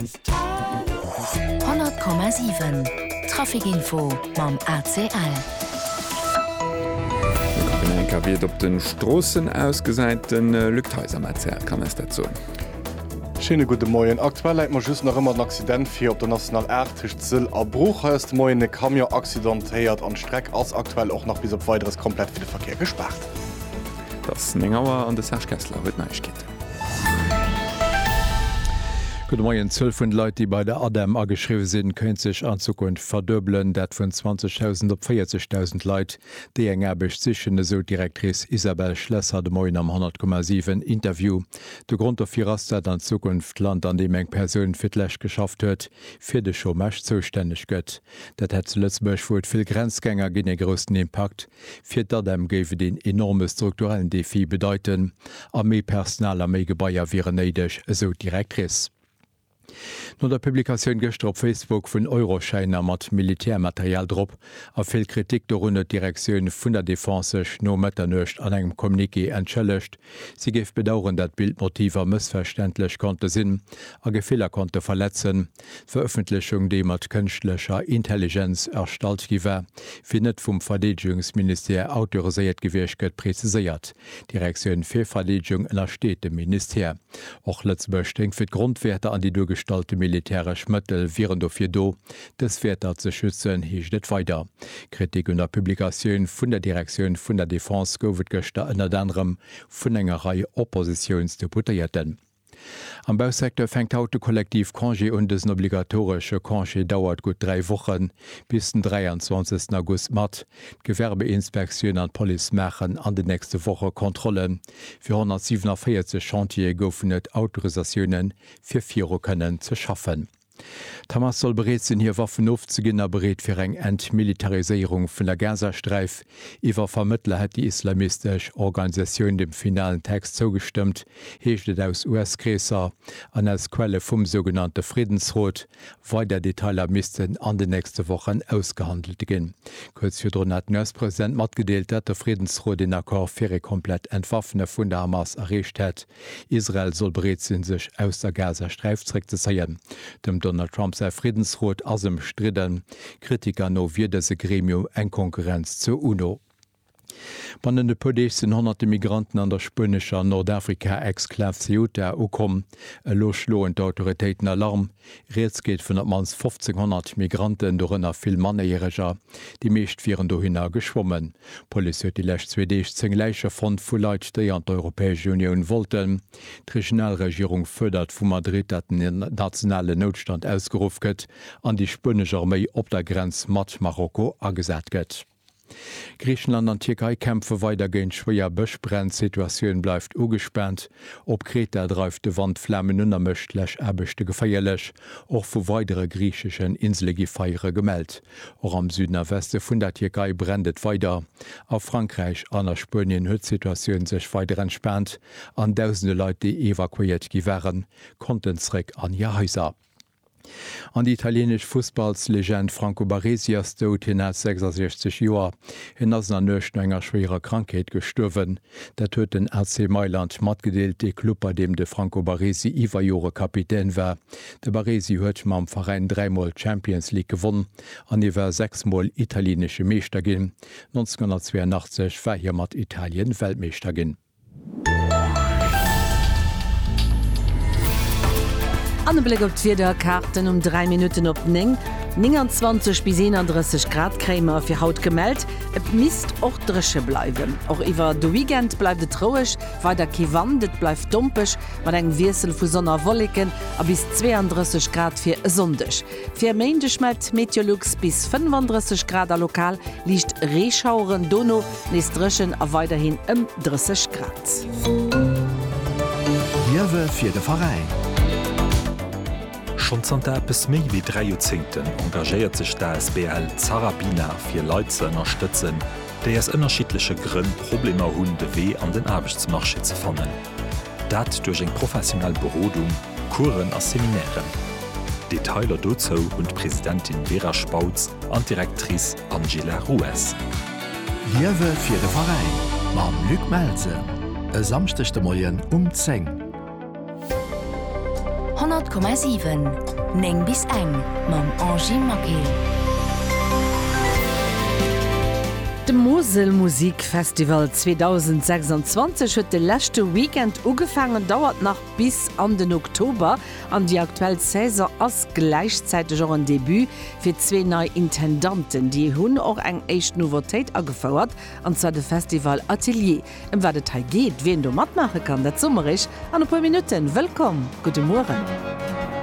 100,7 Trafic-Info mam ACL. An eng Kéier wéi et op de Stroossen ausgesäit, de Luc Theis am ACL kann eis dat soen. Schéine gudde Moien. Aktuell läit mer just nach ëmmer en Accident vir op der National 8 tëscht Sëll a Bruch. Hei ass de Moien e Camion accidentéiert an d'Streck ass aktuell och nach bis op Weideres komplett fir de Verkéier gespaart. Et ass 9 Auer an de Serge Kessler huet d'Neiegkeeten. Gudde Moien. D'Zuel vun de Leit, déi bei der ADEM ageschriwwe sinn, kéint sech an Zukunft verduebelen. Dat vun 20.000 op 40.000 Leit, déi eng Aarbecht sichen, esou d'Directrice Isabelle Schlesser de Moien am 100,7 Interview. De Grond dofir ass, dat an Zukunft d'Land, an deem eng Persoun fir d'lescht geschafft huet, fir de Chômage zoustänneg gëtt. Dat hätt zu Lëtzebuerg, wou et vill Grenzgänger ginn, ee groussen Impakt, Fir d'ADEM géif et een enorme strukturellen Defi bedeiten a méi Personal a méi Gebaier wieren néideg, esou d'Directrice. No der Publikatioun gëschter op Facebook vun Euroschäiner mat Militärmaterial drop a vill Kritik dorun huet d'Direktioun vun der Defense sech no Mëtternuecht an engem Communiqué entschëllegt. Si géif bedaueren, dat Bildmotiver mëssverständlech konnte sinn a Gefiller konnte verletzen. D'Verëffentlechung, déi mat kënschtlecher Intelligenz erstallt gi war, wier net vum Verdeedegungsministère autoriséiert gewiescht, gëtt preziséiert. D'Direktioun fir Verdeedegung ënnersteet dem Ministère. Och Lëtzebuerg stéing fir d'Grondwäerter an déi duergestallte militäresch Mëttel wieren dofir do, dës Wäerter ze schützen, heescht et weider. Kritik un der Publikatioun vun der Direktioun vun der Defense gouf et gëschter ënnert anerem vun enger Rei Oppositiounsdeputéierten. Am Bausecteur fänkt haut de Kollektiv Congé un. Dësen obligatoresche Congé dauert gutt dräi Wochen, bis den 23 August mat. D'Gewerbeinspektioun an d'Police maachen an den nächste Woche Kontrollen. Fir 147 Chantiere goufen et Autorisatioune fir viru kënnen ze schaffen. D'Hamas soll bereet sinn, hir Waffen ofzeginn a bereet fir eng Entmilitariséierung vun der Gazasträif. Iwwer Vermëttler hätt déi islamistesch Organisatioun dem finalen Text zougestëmmt, heescht et aus US-Kreesser an aus Quelle vum sougenannte Friddensrot. Weider Detailer missten an den nächste Wochen ausgehandelt ginn. Kuerz virdrun hat den US-President matgedeelt, datt de Friddensrot een Accord fir ee komplett Entwaffene vun der Hamas erreecht hätt. Israel soll bereet sinn, sech aus der Gazasträif zréckzezéien. Dem Donald Trump säi Friddensrot ass ëmstridden. Kritiker no wier dëse Gremium eng Konkurrenz zur UNO. Bannent e puer Deeg sinn honnerte Migranten an der spuenescher Nordafrika-Exklav Ceuta ukomm. Elo schloen d'Autoritéiten Alarm. Rieds geet vun op d'mannst 1.500 Migranten, dorënner vill Mannéiereger. Déi meescht wieren dohinner geschwommen. D'Police huet déi lescht zwee Deeg 10 Läiche fonnt vu Leit, déi an d'Europäesch Unioun wollten. D'Regionalregierung fuerdert vu Madrid, datt en nationalen Noutstand ausgeruff gëtt an déi spuenesch Arméi op der Grenz mat Marokko agesat gëtt. Griichenland an Tierkei kämpfe weider géint schwéier Bëschbränn, d'Situatioun bleift ugespaant. Op Kreta dreift de Wand Flamen un a mécht d'Läschaarbechte geféierlech. Och vu weidere griicheschen Insele gi Feiere gemellt. Och am Süden a Weste vun der Tierkei brennt et weider. A Frankräich an a Spuenien huet d'Situatioun sech weider entspaant an dausende Leit, déi evakuéiert gi waren, konnten zeréck an hir Haiser. An déi italienesch Fussballslegend Franco Baresi ass dout. Hien hat 66 Joer. Hien ass an der Nuecht no enger schwéierer Krankheet gestuerwen. Dat huet den AC Mailand matgedeelt, dee Club, bei deem de Franco Baresi iwwer Jore Kapitän war. De Baresi huet mam Veräin dräimol d'Champions League gewonn an hie war sechs Mol italienesche Meeschter ginn. 1982 war hie mat Italien Weltmeeschter ginn. An e Bléck op d'Wiederkaarten um 3 Minutten op 9, 29 bis 31 Grad kréie mer fir haut gemellt. Et misst och dréche bleiwen. Och iwwer de Weekend bleift et roueg, weider kee Wand, et bleift dompeg mat engem Wiessel vu Sonn a Wolleken a bis 32 Grad fir e Sonndeg. Fir e Méindeg mellt d'Meteolux bis 35 Grad a lokal liicht Reeschaueren, dono nees dréchen a weiderhin ëm 30 Grad. Liewe fir de Veräin. Schonn zanter eppes méi wéi dräi Joerzéngten engagéiert sech d'asbl Zarabina fir Leit ze ënnerstëtzen, déi aus ënnerschiddleche Grënn Problemer hunn, de Wee an den Aarbechtsmarché ze fannen. Dat duerch eng professionell Berodung, Coursen a Seminairen. Detailer dozou hunn d'Presidentin Vera Spautz an d'Directrice Angela Rues. Liewe fir de Veräin mam Luc Melsen e Samschdeg de Moien um 10. 100,7 9 bis eng mam Angy Maquet. De Mosel Musik Festival 2026 huet de leschte Weekend ugefaangen, dauert nach bis an den Oktober an déi aktuell Saison ass gläichzäiteg och en Debut fir zwee nei Intendanten. Déi hunn och eng éischt Nouveautéit agefouert, an zwar de Festival Atelier. Em wat et hei geet, wien do matmaache kann, dat soe mer iech an e puer Minutten. Wëllkomm, gudde Mueren.